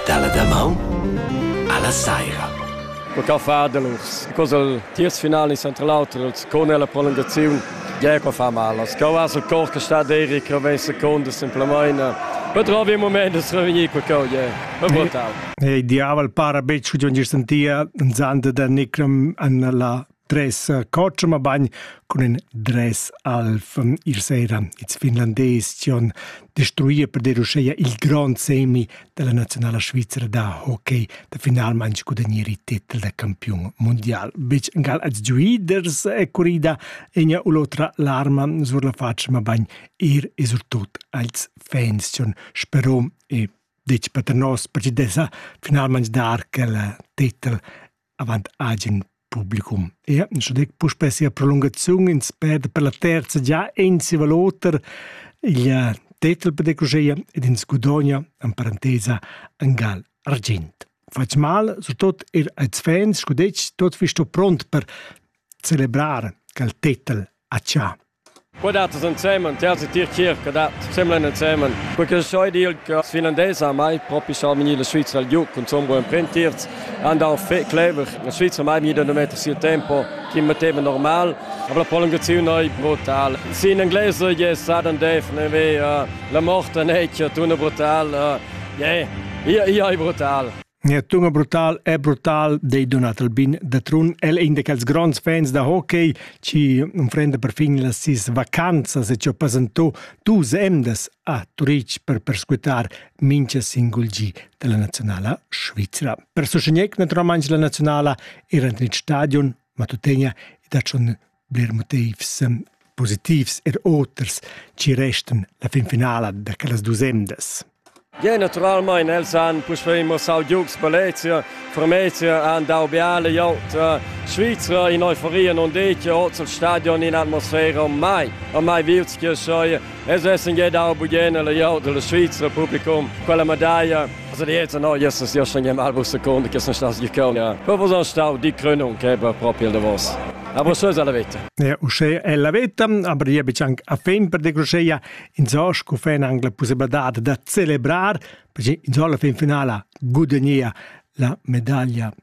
Dalla damaun alla saira. Per ca fa del urs? Cos el tiers final in central auter els con la prolongaziun Gea qua fa mal. As cau as el cor che sta deri che ven seconda semplamaina. Betrovi un moment de revenir per cau, yeah. Per brutal. Ei diavel para betg gion gir sentia zand da Nikram an la Dress cotsch, ma bagn cun ün dress alv. Ir sera its Finlandes tion destruir per dir uscheia il grond semi della nazionala svizra da hockey da finalmaing gudagnir il titel da campiun mundial. Bitg gal als giuiders è curida egna u l'otra l'arma sur la faccia, ma bagn ir e surtut als fans tion spero e ditg per nos percidesa finalmaing dar quel titel avant agen publicum. Ja, schon dec puspè sia prolungaziun in speda per la terza già ensi val oter il tetel per decosea ed in scudogna en parentesa angal argint. Fats mal, so tot er als fans, scudec tot fisto pront per celebrar cal tetel a cià. Qua dattas ensemen, ti has e tier chir che dat semlain ensemen. Quei che soi dir che as finlandese ha mai propi sormini la Svizra al giug, cunzun buon imprentirz, han dau fetg clever. La Svizra mai mi da metter sil tempo chi metteva normal, aber la prolongaziun ei brutal. Si in inglese je sudden death neve, la morte nature tuna brutal. Je, ia, ia ei brutal. Nia tunga brutal è brutal, dei Donat Albin da Trun. El è in da quels gronds fans da hockey, ci unfrenda per fin las sis vacanzas e ci ho pasentò dus emdas a Turic per perscutar mincha singul gi della nazionala svizra. Per sostegnec naturalmente la nazionala era nel stadion Matutenia ed ha schon bler motivs positivs er oters ci restan la finfinala da quellas dus emdas. Ja, naturalmein els han puspei mossau giugs Balezia, Formezia han dau biale jaut Svizra in euforia non decchia oz al stadion in atmosfera mai a mai vilts che sei Es es in dau bugena la jau della Svizzera publicum quella medaglia Also die jetzt noch Jesus ja schon mal was Sekunde gestern das gekommen ja aber was stau die Krönung che va proprio da vos Aber so ist alla vita. Ja, usce è la vita, aber io bici anche a fin per de crusceia, insomma, cu fe anche la possibilità da celebrare, perché insomma alla fin finale guadagna la medaglia